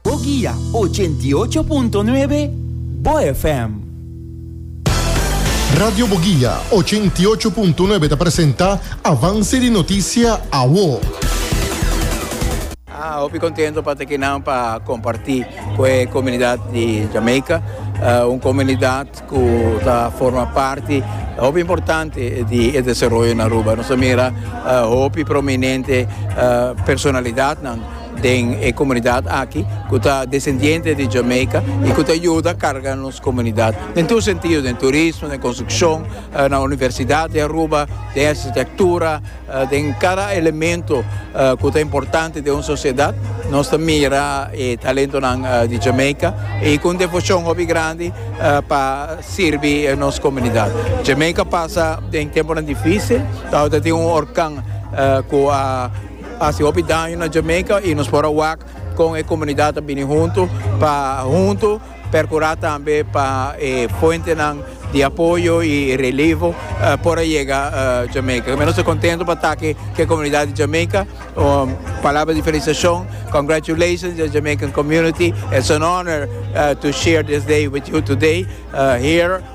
Bo guia ochenta i ocho punto nuebe Bo FM. Radio Boguia ochenta i ocho punto nuebe ta presenta Avance di Noticia Awo. Hopi contento pa tekinan pa comparti cu e comunidad di Jamaica, un comunidad cu ta forma parti hopi importante di e desaroyo na Aruba. Nos a mira hopi prominente personalidadnan den e comunidad aki cu ta descendiente di Jamaica y cu ta yuda carga nos comunidad den tur sentido, den turismo, den construccion, na Universidad di Aruba, den architectura. Den cada elemento cu ta importante den un sociedad nos ta mira e talentonan di Jamaica y cu un devocion hopi grandi pa sirbi nos comunidad. Jamaica pasa den temponan dificil, awe ta tin un horcan cu a haci hopi daño na Jamaica y nos por a wak con e comunidad ta bini hunto pa hunto. Percura tambe pa e fuentenan di apoyo y relevo por a yega Jamaica. Tambe nos ta contento pa taki ki e comunidad di Jamaica. Un palabra di felicitacion. Congratulations the Jamaican community. It's an honor to share this day with you today here.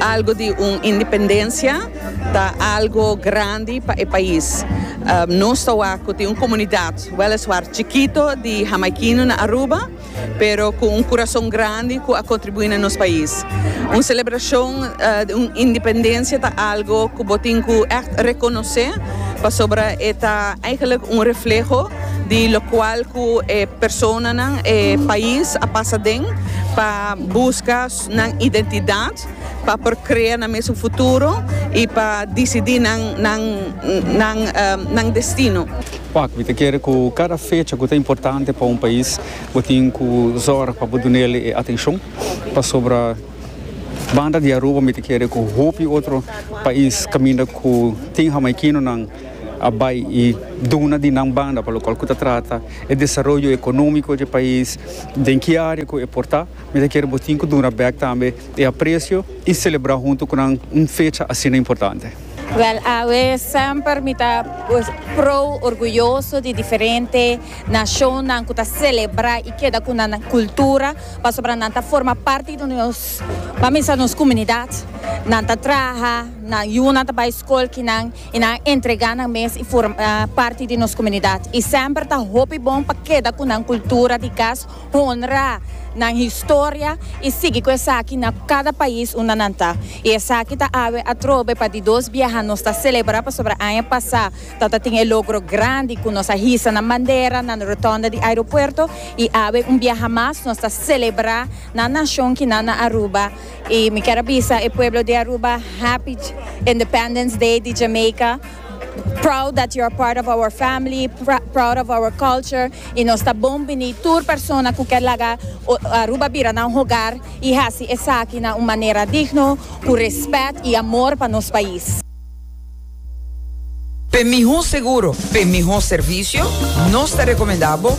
Algo di un independencia ta algo grandi pa e pais. Nos ta wak cu tin un comunidad, weliswaar chikito, di Hamaikino na Aruba, pero cu un curason grandi cu a contribui na nos pais. Un celebracion di un independencia ta algo cu bo tin cu echt reconoce, pasobra e ta eigenlijk un refleho di locual cu e personanan, e pais a pasa den pa busca. nan identidad pa por crea nan mes un futuro y pa dicidi nan destino. Wak, mi ta kere cu cada fecha cu ta importante pa un pais bo tin cu zorg pa bo dun'el e atencion, pasobra banda di Aruba mi ta kere cu hopi otro pais caminda cu tin Hamaikinonan a bay y duna di nan banda pa locual cu ta trata e desaroyo economico dje pais, den ki area cu e por ta. Mi ta kere botin ku duna bèk tambe e apresio i selebrá huntu ku nan un fecha asina importante. Wèl, awe semper mi ta prou orguyoso di diferente nashonnan ku ta selebrá i keda ku nan kultura pasobra nan ta forma parti di nos pamesa nos komunidat. Nan ta traha, nan yunan ta bai skol kinan i nan a entregá nan mes i forma parti di nos komunidat. I semper ta hopi bon pa keda ku nan kultura di kas. honra nan historia y sigui cu esaki na cada pais unda nan ta. Y esaki ta awe atrobe pa di dos biaha nos ta celebra pasobra aña pasa ta ta tin e logro grandi cu nos a hisa nan bandera na rotonda di aeropuerto y awe un biaha mas nos ta celebra nan nacion ki nan na Aruba y mi kier a bisa e pueblo di Aruba happy Independence Day di Jamaica Proud that you are part of our family, proud of our culture y nos ta bon bini tur persona cu kier laga Aruba bira nan hogar y haci esaki na un manera digno, cu respet y amor pa nos pais. P'e miho seguro, p'e miho servicio, nos ta recomenda bo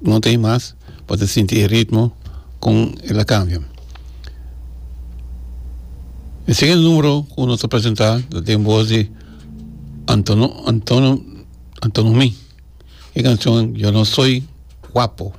no ta hay mas bo ta sinti e ritmo con el a cambia e segundo numero cu nos ta presenta ta den voz di Anton Anton Anton Romy e cancion yo no soy guapo.